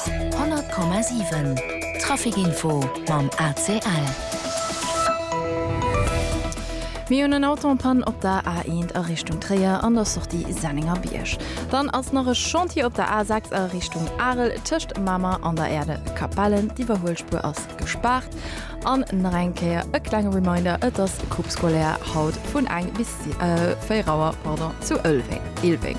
100,7 Traficinfo mam ACL. Mir hunn en Auto en panne op der A1 a Richtung Tréier an der Sortie Sennengerbierg. Dann ass nach e Chantier op der A6 a Richtung Arel tëscht Mamer an der Erde Capellen. D'Iwwerhuelspuer ass gespaart. An nach eng Kéier e klenge Reminder, Et ass Coupe scolaire haut vun eng bis 4 Auer, pardon, zu Ëlweng, Ilweng.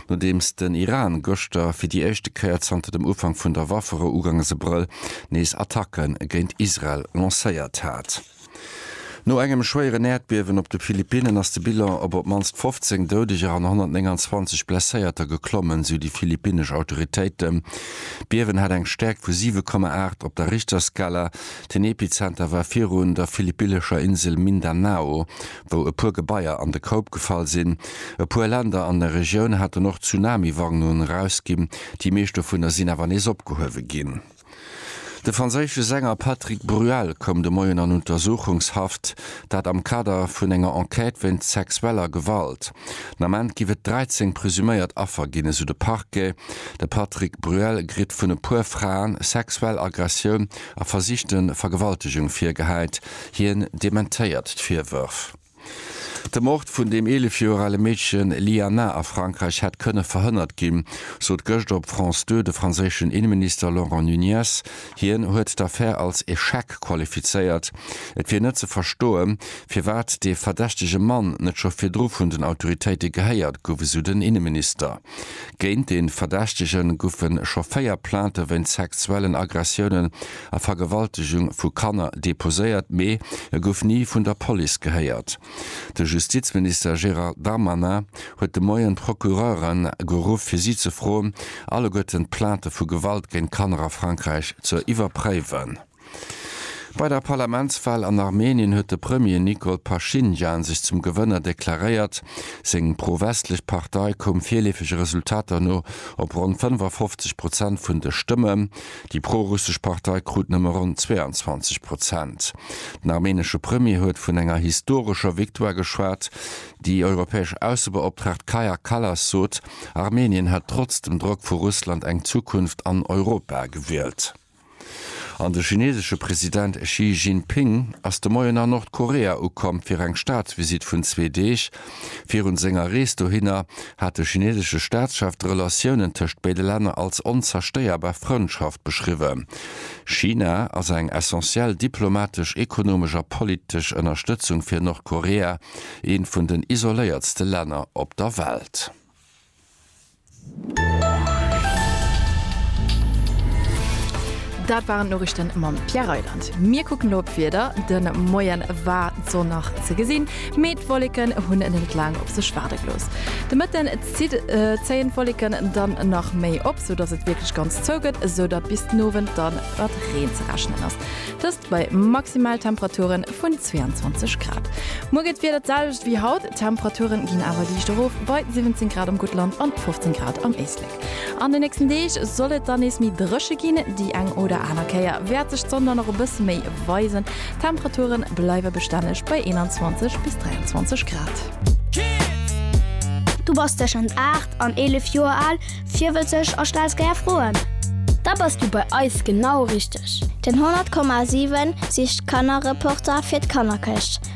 Nodeems den Iran gëschter fir déi éischte Kéier zanter dem Ufank vun der Wafferou uganges Abrëll nees Attacke géint Israel lancéiert hat. No engem schwéieren Äerdbiewen op de Philippinnen ass de Bilan op op d'mannst 15 Doudeger an 129 Blesséierter geklommen, sou déi philippinnesch Autoritéiten. D'Biewen hat eng Stäerkt vu 7,8 op der Richterskala. Den Epizenter war virun der philippillescher Insel Mindanao. wou e puer Gebaier an de Koup gefall sinn. E puer Länder an der Regioun haten och Tsunami-Warnungen erausginn, déi meescht dovunner sinn awer nees opgehuewe ginn. De franséische Sänger Patrick Bruel koum de Moien an Untersuchungshaft, dat am Kader vun enger Enquête wéinst sexueller Gewalt. Den Ament giff et 13 presuméiert Affer ginn, esou de Parquet. De Patrick Bruel kritt vun e puer Fraen sexuell Aggressioun a versichte Vergewaltegung virgehäit. Hien dementéiert d'Virwërf. De Mord vun dem 11 Joer ale Meedchen Lyana a Frankräich hätt kënne verhënnert ginn, sot gëscht op France Deux de franséischen Inneminister Laurent Nunez. Hien huet d'Affär als Echec qualifizéiert. Et wier net ze verstoe firwat dee verdächtege Mann net scho virdru vun den Autoritéite gehéiert gouf, esou den Inneminister. Géint de Verdächtege goufe scho véier Plainte wéint sexuellen Aggressiounen a Vergewaltegung vu Kanner deposéiert, mee e gouf ni vun der Police gehéiert. De Justizminister Gérald Darmanin huet de Moien d'Procureure geruff, fir si ze froen, alleguerten d'Plainte vu Gewalt géint Kanner a Frankräich ze iwwerpréiwen. Bei der Parlamentswal an Armenien huet de Premier Nikol Paschinjan sech zum Gewënner deklaréiert. Seng pro-westlech Partei koum virleefege Resultater no op ronn 55 Prozent vun de Stëmmen. Déi pro-russesch Partei krut nëmme ronn 22 Prozent. Den armenesche Premier huet vun enger historescher Victoire geschwat. Déi europäesch Aussebeoptraagt Kaja Kallas sot, Armenien hätt trotz dem Drock vu Russland eng Zukunft an Europa gewielt. An de chinesesche President Xi Jinping ass de Moien a Nordkorea ukomm fir eng Staatsvisitt vun zwee Deeg. Virun senger Rees dohinner hat de chinesesche Staatschef d'Relatiounen tëscht béide Länner als onzerstéierbar Frëndschaft beschriwwen. China ass eng essentiell diplomatesch, ekonomesch a politesch Ënnerstëtzung fir Nordkorea, eent vun den isoléiertste Länner op der Welt. Dat waren d'Noriichten mam Pierre Reyland. Mir kucken elo op d'Wieder. De Moien war d'Sonn nach ze gesinn, mee d'Wolleken hunn et net laang op sech waarde gelooss. De Mëtten zitt zéien d'Wolleken dann nach méi op, sou dass et wierklech ganz zou gëtt, sou datt bis den Owend dann mat Reen ze rechnen ass. Dëst bei Maximaltemperaturen vun 22 Grad. Muer geet d'Wieder d'selwecht wéi haut. D'Temperature ginn awer liicht erof, bei 17 Grad am Guttland an 15 Grad am Éislek. An de nächsten Deeg soll et dann nees méi dréche ginn, déi eng oder aner Kéier wäert sech d'Sonn dann och e bësse méi weisen. D'Temperature bleiwe bestänneg bei 21 bis 23 Grad. Du bass tëschent 8 an 11 Joer al, virwëtzeg a stells gär Froen? Da bass du bei eis genau richteg! Den 100,7 sicht Kannerreporter fir d'Kannerkëscht.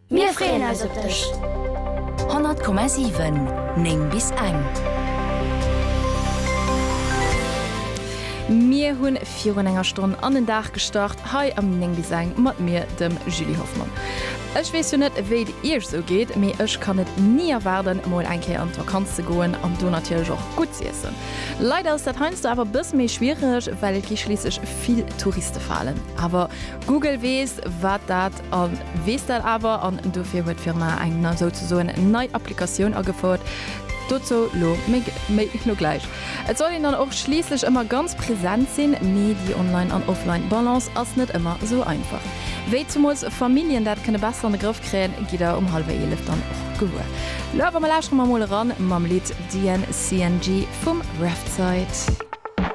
Mir freeën eis op dech! 100,7, 9 bis eng. Mir hunn virun enger Stonn an den Dag gestart hei am 9 bis eng mat mir, dem Julie Hoffmann. Ech weess jo net wéi et iech esou geet, mee ech kann et ni erwaarden mol eng Kéier an d'Vakanz ze goen an do natierlech och gutt z'iessen. Leider ass dat heiansdo awer e bësse méi schwiereg, well et gi schliisslech vill Touriste falen. Awer Google weess wat dat A weess dat awer an dofir huet d'Firma eng na souzesoen nei Applikatioun agefouert. Dozou lo méi méi lo gläich. Et soll een dann och schliisslech ëmmer ganz present sinn, mee déi Online an Offline Balance ass net ëmmer esou einfach. Wéi zumools Familljen dat kënne besser an de Grëff kréien, gitt der um hallwer eelef dann och gewuer. Lo awer, mer lauschere mer mol eran mam Lidd DNCNG vum Refzait.